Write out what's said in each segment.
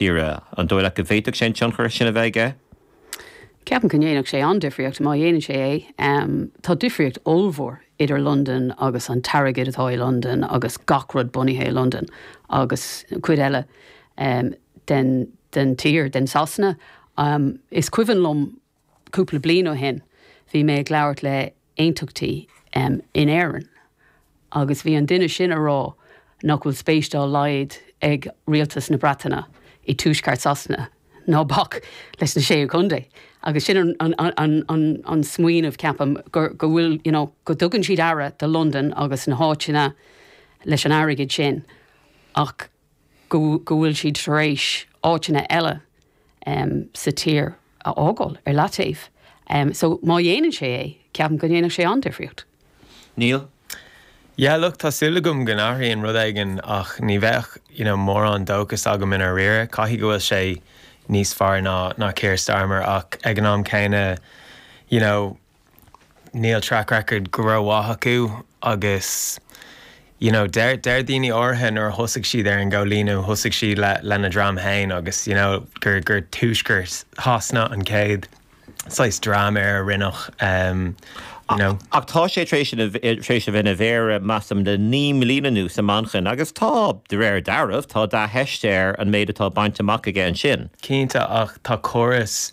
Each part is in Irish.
Éire. An dóigh leat go bhféadfadh sé an tionchar sin a bheith aige? Ceapaim go ndéanfadh sé an-difríocht, má dhéanann sé é. Tá difríocht ollmhór idir Londain agus an t-airgead atá i Londain agus gach rud bunaithe i Londain agus an chuid eile den tír, den Sasana. Is cuimhin liom Cúpla bliain ó shin bhí mé ag labhairt le aontachtaí in Éirinn agus bhí an duine sin a rá nach bhfuil spéis dá laghad ag rialtas na Breataine i dtuaisceart Sasana ná bac leis na Sé Chontae agus sin an smaoineamh ceapaim go bhfuil you know go dtugann siad aire do Londain agus na háiteanna leis an airgead sin ach go bhfuil siad tar éis áiteanna eile sa tír a fhágáil ar leataobh so má dhéanann sé é, ceapaim go ndéanfadh sé an-difríocht. Níl. Yeah look tá súil agam go n-athraíonn rud éigin ach ní bheadh you know mórán dóchas agam i ndáiríre. Caithfidh go bhfuil sé níos fearr ná Keir Starmer ach ag an am céanna you know, níl track record go ró mhaith acu agus you know deir daoine áirithe nuair a thosaigh siad ar an gcóilíniú thosaigh siad le lena dhream féin agus you know gur tuaisceart Shasana an chéad saghas dream ar a rinneadh ehm you know. Ach tá sé tar éis ina tar éis a bheith ina mhéara measaim le naoi mbliana anuas i Manchain agus tá de réir dealraimh tá dea-theist air an méid atá bainte amach aige ansin. Cinnte ach tá córas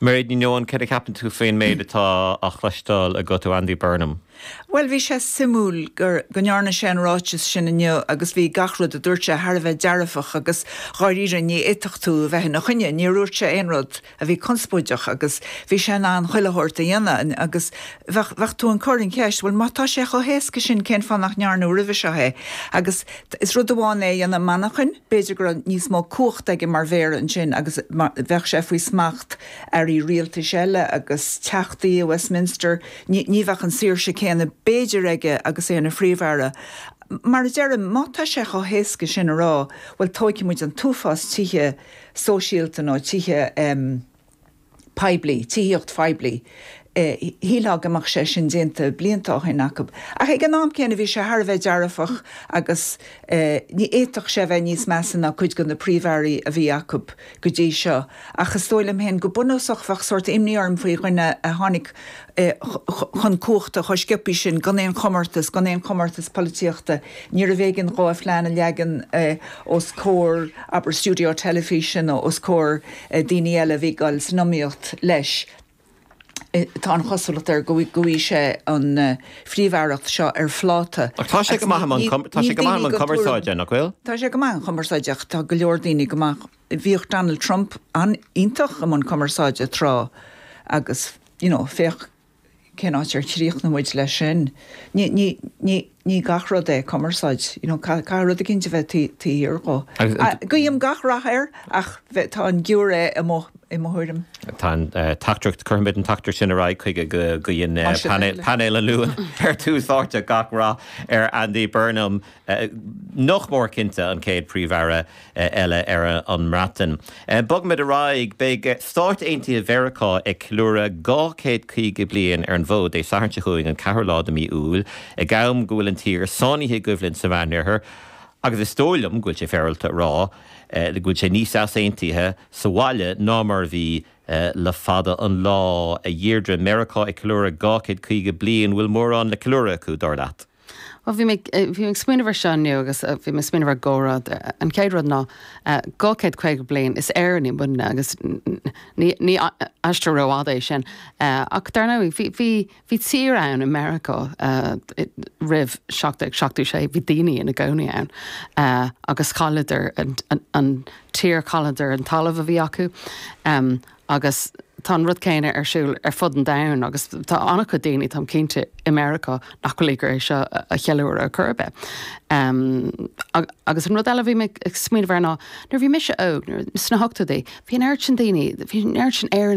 Mairéad Ní Nuadháin, Céard a cheapann tú faoin méid atá á chloisteáil agat ó Andy Burnham? Bhuel, bhí sé suimiúil gur, go ndearna sé an ráiteas sin inniu agus bhí gach rud a dúirt sé thar a bheith dearfach agus dháiríre ní fhéadfadh tú a bheith ina choinne, níor dhúirt sé aon rud a bhí conspóideach agus bhí sé in ann chuile shórt a dhéanamh agus bheadh, bheadh tú ag cur an cheist bhuel má tá sé chomh héasca sin cén fáth nach ndearnadh roimhe seo é agus Is rud amháin é a dhéanamh i Manchain, b'fhéidir go raibh níos mó cumhachta aige mar mhéara ansin agus beidh sé faoi smacht airí rialtais eile agus teachtaí i Westminster, ní bheadh an saoirse céanna b'fhéidir aige agus é ina Phríomh-Aire. Mar a deirim, má tá sé chomh héasca sin a rá, bhuel, tógfaidh muid an t-uafás tithe sóisialta nó tithe. poiblí, tithíocht phoiblí. Shílfeá go mbeadh sé sin déanta blianta ó shin acu, ach ag an am céanna bhí sé thar a bheith dearfach agus ní fhéadfadh sé a bheith níos measa ná cuid de na príomh-airí a bhí acu go dtí seo. Ach is dóigh liom féin go bunúsach bheadh sórt imní orm faoi dhuine a tháinig chun cumhachta chomh sciopaí sin gan aon chomórtas, gan aon chomórtas polaitíochta. Níorbh éigean dhó a phlean a leagan os comhair, abair, stiúideo teilifíse nó os comhair. daoine eile a bhí ag dul san iomaíocht leis. Tá an chosúlacht air go bhfaighidh sé an phríomh-aireacht seo ar phláta. Ach tá sé go maith i mbun cumarsáide, tá sé go maith i mbun cumarsáide, nach bhfuil? Tá sé go maith i mbun cumarsáide, ach tá go leor daoine go maith, bhíodh Donald Trump an-iontach i mbun cumarsáide tráth agus, you know, féach, cén áit ar chríochnaigh muid leis sin? Ní, ní, ní, ní gach rud é cumarsáid, you know, caithfidh rud éigin a bheith taobh thiar de. Guím gach rath air ach tá an giúiré amuigh, i mo thuairim. Tá an teachtaireacht, cuirfimid an teachtaireacht sin ar aghaidh chuige go guíonn Painéal an Luain ar Tús Áite gach rath ar Andy Burnham, nach mór cinnte an chéad Príomh-Aire. eile ar an mBreatain. Bogfaimid ar aghaidh. Beidh Stáit Aontaithe Mheiriceá ag ceiliúradh dhá chéad caoga bliain ar an bhfód Dé Sathairn seo chugainn, an ceathrú lá de mhí Iúil, ag am go bhfuil an tír sáinnithe i gcoimhlint sa Mheánoirthear, agus is dóigh liom go bhfuil sé féaráilte a rá go bhfuil sé níos easaontaithe sa bhaile ná mar a bhí le fada an lá. A Dheirdre, Meiriceá ag ceiliúradh dhá chéad caoga bliain, an bhfuil mórán le ceiliúradh acu, dar leat? Bhuel, bhí mé ag, bhí mé ag smaoineamh air seo inniu agus bhí mé ag smaoineamh ar dhá rud. An chéad rud ná, dhá chéad caoga bliain, is Éireannaigh muidne agus ní, ní aistear rófhada é sin. Ach dar ndóigh, bhí, bhí, bhí tír ann i Meiriceá roimh seacht déag seachtó sé, bhí daoine ina gcónaí ann agus chailleadar an, an tír, chailleadar an talamh a bhí acu. Agus tá an rud céanna ar siúl ar fud an domhain agus tá an-chuid daoine, táim cinnte, i Meiriceá nach bhfuil ag iarraidh é seo a cheiliúradh ar chor ar bith. Agus an rud eile a bhí mé ag smaoineamh air ná nuair a bhí mise óg, sna hochtóidí, bhí an oiread sin daoine, bhí an oiread sin Éireannaigh,